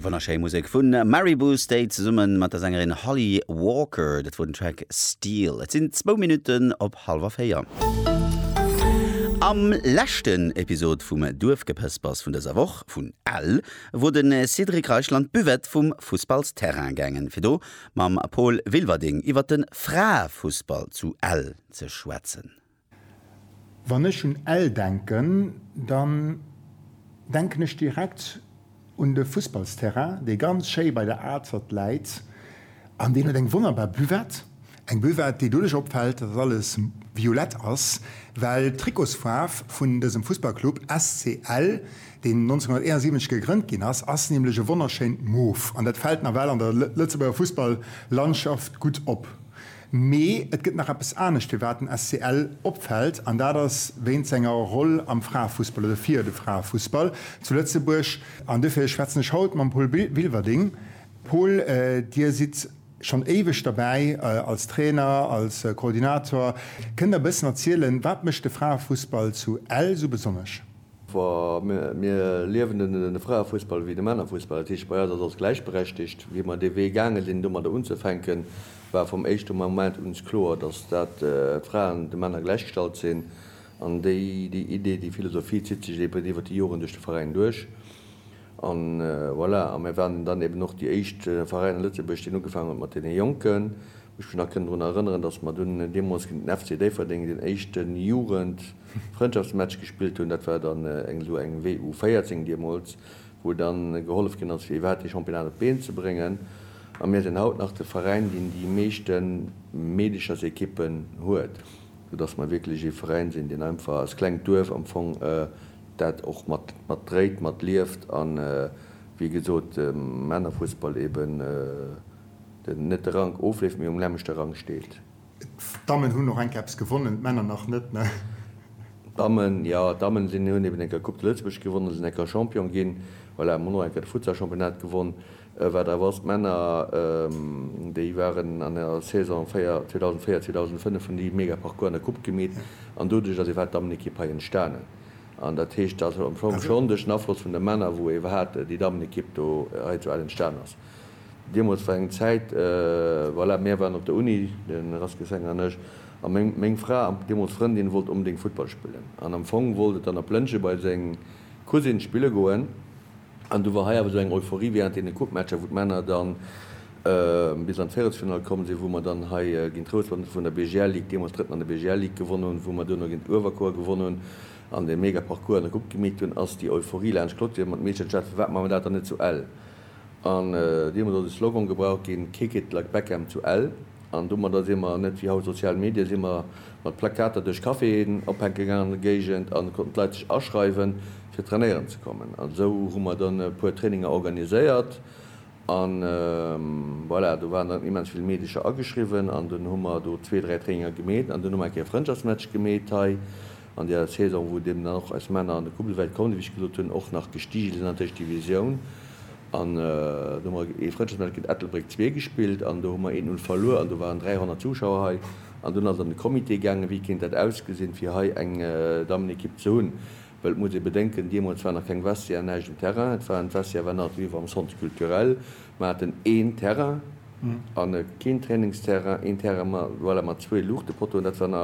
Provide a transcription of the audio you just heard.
Wonnerschéi Musek vu Maribou State zesumme mat der Sängerin Holly Walker. Dat wor den Track Steel. Et sinn zwou Minutten op hallwer véier. Am leschten Episod vum Duerfgepëspers vun dëser Woch, vun Ell, wor de Cédric Reichel an d'Buvette vum Fussballsterrain gaangen, fir do mam Paul Wilwerding iwwer de Fraefussball zu Ell ze schwätzen. Wann ech un Ell denken, dann denken ech direkt un de Fussballsterrain, dee ganz schéi bei der Azert läit an deen huet eng wonnerbar Buvette. Eng Buvette, déi doduerch opfält, dass alles violett ass, well d'Trikotsfaarf vun dësem Fussballclub SC Ell, deen 1971 gegrënnt ginn ass, ass nämlech e wonnerschéint Mof an dat fält nawell an der Lëtzebuerger Fussball-Landschaft gutt op. Mee et gëtt nach eppes anescht, firwat den SCL opfält, an dat ass wéint senger Roll am Fraefussball, oder fir de Fraefussball zu Lëtzebuerg. An dofir schwätzen ech haut mam Paul Wilwerding. Paul, Dir sidd schonn éiweg derbäi als Trainer, als Koordinator. Kënnt Der e bëssen erzielen, wat mécht de Fraefussball zu Ell esou besonnesch? Wa mir liewen den Fraefussball wéi de Männerfussball, dat heescht bei eis ass alles gläichberechtigt. Wéi mer dee Wee gaange sinn domadder unzefänken, war vum éischte Moment uns kloer, dass dat d'Fraen de Männer gläichgestallt sinn. An déi Idee, déi Philosophie zitt sech eben iwwert déi Joren duerch de Veräin duerch. A voilà, a mär waren dann eben och déi éischt Veräin a Lëtzebuerg, deen ugefaangen huet mat deene Jonken. Ech mech nach kënnen drun erënneren, datt mer dunn deemools géint den FC Déifferdeng deen éischte Jugend-Frëndschaftsmatch gespillt hunn. Dat war dann eng esou eng WU 14 deemools, wou dann gehollef ginn ass, fir iwwerhaapt dee Championnat op d'Been ze bréngen. A mir sinn haut nach de Veräin, deen déi meeschte Meedechersequippen huet, soudatt mer wierklech ee Veräin sinn, deen einfach als klengt Duerf am Fong dat och mat mat dréit, mat lieft a wéi gesot dem Männerfussball eben den, net de Rank ofleeft, mee um nämmlechte Rang steet. D'Dammen hunn och eng Kéier eppes gewonnen, d'Männer nach net, ne? D'Dammen, jo, d'Dammen sinn, hunn eben eng Kéier Coupe de Lëtzebuerg gewonnen, sinn eng Kéier Champion ginn, voilà, hunn och eng Kéier de Futsal-Championnat gewonn. Wat awer ass, d'Männer, déi waren an der Saison 2004, 2005, hunn déi mega Parcours an der Coupe gemeet an doduerch ass iwwerhaapt d'Dammenekipp hei entstanen. An dat heescht, dat ass am Fong schonn duerch den Afloss vun de Männer, wou iwwerhaapt déi Dammenekipp do hei zu Ell entstanen ass. Deemools war eng Zäit, voilà, mär waren op der Uni, de Rask Essenger an ech, a meng Fra, deemools Frëndin, wollt onbedéngt Futtball spillen an am Fong wollt et dann op Lëntge bei seng Cousine spille goen. An du war hei awer esou eng Euphorie während deene Coupematcher, wou d'Männer dann bis an d'Véierelsfinall komm sinn, wou mer dann hei géint d'Routh Roden vun der BGL Ligue, deemools Drëtten an der BGL Ligue, gewonnen hunn, wou mer duerno géint Uewerkuer gewonnen hunn an e mega Parcours an e Grupp gemeet hunn, ass déi Euphorie laanscht d'Clôture geet. Mer hunn d'Meeschte geschwat, firwat maache mer dat dann net zu Ell? An deemools ass e Slogan gebraucht ginn, Kick it like Beckham to Ell. An domadder si mer, net wéi haut sozial Medien, si mer mat Plakater duerch Caféen ophaanke gaangen an der Géigend an et konnten d'Leit sech aschreiwen, fir trainéieren ze kommen. An esou hu mer dann e puer Traininger organiséiert an voilà, do waren dann immens vill Meedercher ageschriwwen an dunn hu mer do zwee, dräi Traininger gemeet an dunn hu mer eng Kéier e Frëndschaftsmatch gemeet hei. An der Saison, wou deemno och eis Männer an de Kubbelwäit kommen, wéi ech gesot hunn, och nach gestige sinn an d'Éischt Divisioun, an do hu mer ee Frëndschaftsmatch géint Ettelbréck zwee gespillt an do hu mer eent Null verluer an do waren 300 Zuschauer hei an dunn ass et an de Comité gaangen, wéi kéint dat ausgesinn, fir hei eng Dammenekipp ze hunn, well et muss ee bedenken, deemools war nach keng Vestiaire, näischt um Terrain, et waren, d'Vestiaire war nach do, wéi mer am Centre Culturel, mer haten een Terrain a keen Trainingsterrain, een Terrain, voilà, mat zwee Luuchtepottoen, dat war nach.